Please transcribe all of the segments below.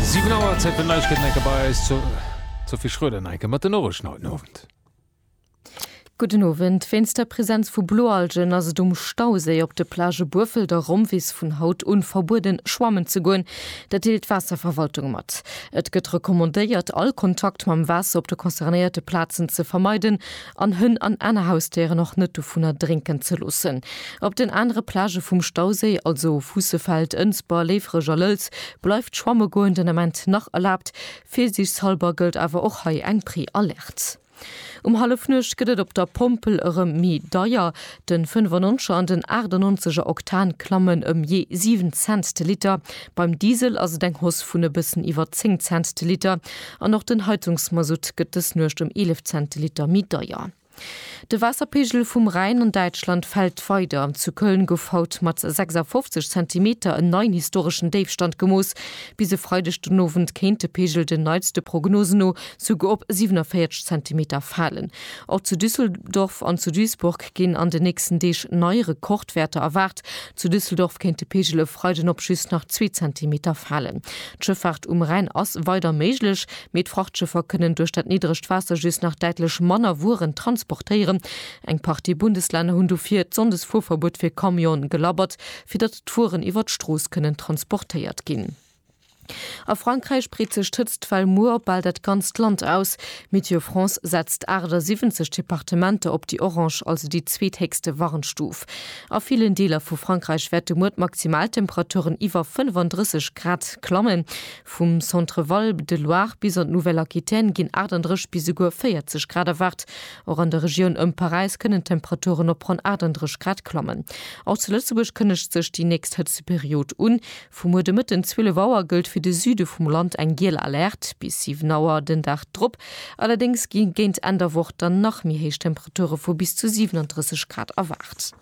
7 Auer, Zäit fir Neiegkeeten enke bei eis zur Sophie Schröder enke mat den Norrichten haut den Owend. Gudden Owend. Wéinst der Presenz vu Bloalgen ass et um Stauséi op de Plagë Buerfelt a Romvis vun haut un verbueden schwammen ze goen. Dat deelt d'Waasserverwaltung mat. Et gëtt recommandéiert all Kontakt mam Waasser op de concernéierte Plazen ze vermeiden, an Hënn an aner Hausdéieren och net dovunner drénken ze loossen. Op den anere Plagë vum Stauséi, also Fuussefeld, Ënsber, Léiferech a Lëlz, bleift schwamme goen den Ament nach erlaabt. Virsiichtshallber gëllt awer och hei eng Pré-Alerte. Um Hallefnuecht gëtt et op der Pompel erëm méi deier. Den fënnofnonzeger an den aachtennonzeger Oktan klammen ëm jee 7 Cent de Liter, beim Diesel ass et eng Hausse vun e bëssen iwwer 10 Cent de Liter an och den Heizungsmasutt gëtt dës Nuecht ëm 11 Cent de Liter méi deier. De Waasserpeegel vum Rhäin an Däitschland fält weider. Zu Köln gouf haut mat 56 Zentimeter en neien historeschen Déifstand gemooss. Bis e Freideg den Owend kéint de Peegel den neitste Prognosen no souguer op 47 Zentimeter falen. Och zu Düsseldorf an zu Duisburg ginn an den nächsten Deeg nei Rekordwäerter erwaart. Zu Düsseldorf kéint de Peegel e Freiden op just nach zwee Zentimeter falen. D'Schëffaart um Rhäin ass weider méiglech, mee d'Frachtschëffer kënnen duerch dat niddregt Waasser just nach däitlech manner Wueren transportéieren. Eng Partie Bundeslänner hunn dofir d'Sonndesfuerverbuet fir Camionen gelabbert, fir datt d'Wueren iwwer d'Strooss kënnen transportéiert ginn. A Frankräich breet sech d'Hëtztwell muer op bal dat ganzt Land aus. Météo France setzt 78 Departementer op déi orange, also déi zweethéchste Warnstuf. A villen Deeler vu Frankräich wäerte muer d'Maximaltemperaturen iwwer 35 Grad klammen. Vum Centre Val de Loire bis an d'Nouvelle Aquitaine ginn 38 bis esouguer 40 Grad erwaart. Och an der Regioun ëm Paräis kënnen d'Temperaturen op ronn 38 Grad klammen. Och zu Lëtzebuerg kënnegt sech déi nächst Hëtzteperiod un. Vu muer de Mëtten 12 Auer gëllt fir de Süde vum Land eng giel Alerte, bis 7 Auer den Dag drop allerdéngs gi géint Enn der Woch dann nach méi héich Temperature vu bis zu 37 Grad erwaart.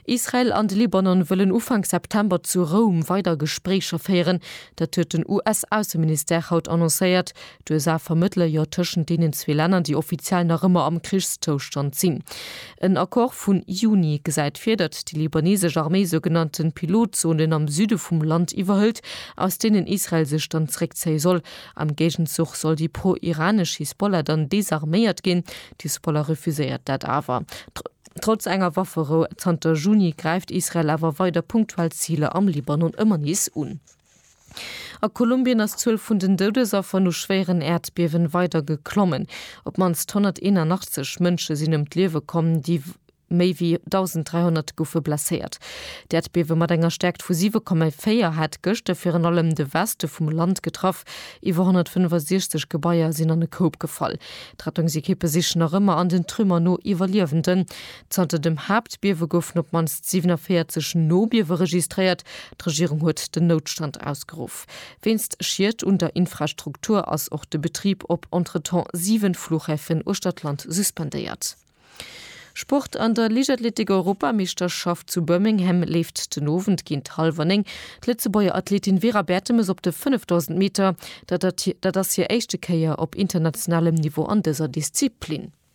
Israel an de Libanon wëllen Ufank September zu Roum weider Gespréicher féieren. Dat huet den US-Ausseministère haut annoncéiert, D'USA vermëttele jo tëschent deenen zwee Länner, déi offiziell nach ëmmer am Krichszoustand sinn. En Accord vun Juni gesäit vir, datt déi libaneesesch Arméi sougenannte Pilotzonen am Süde vum Land iwwerhëlt, aus deenen Israel sech dann zeréckzéie soll. Am Géigenzuch soll déi pro-iranesch Hisbollah dann desarméiert ginn. D'Hisbollah refuséiert dat awer. Trotz enger Wafferou zanter Juni gräift Israel awer weider punktuell Ziler am Libanon ëmmer nees un. A Kolumbien ass d'Zuel vun den Doudesaffer no schwéieren Äerdbiewen weider geklommen. Op d'mannst 181 Mënsche sinn ëm d'Liewe komm, déi méi wéi 1.300 goufe blesséiert. D'Äerdbiewe mat enger Stäerkt vu 7,4 hat gëschter virun allem de Weste vum Land getraff. Iwwer 165 Gebaier sinn an e Koup gefall. D'Rettungsekippe sichen nach ëmmer an den Trümmer no Iwwerliewenden. Zanter dem Haaptbiewe goufen op d'mannst 47 Nobiewe registréiert. D'Regierung huet den Noutstand ausgeruff. Wéinst Schied un der Infrastruktur ass och de Betrib op entretemps 7 Flughäfen uechter d'Land suspendéiert. Sport, An der Liichtathletik-Europameeschterschaft zu Birmingham leeft den Owend géint hallwer 9 d'Lëtzebuerger Athletin Vera Bertemes op de 5000 Meter. Dat ass hir éischte Kéier op internationalem Niveau an dëser Disziplin.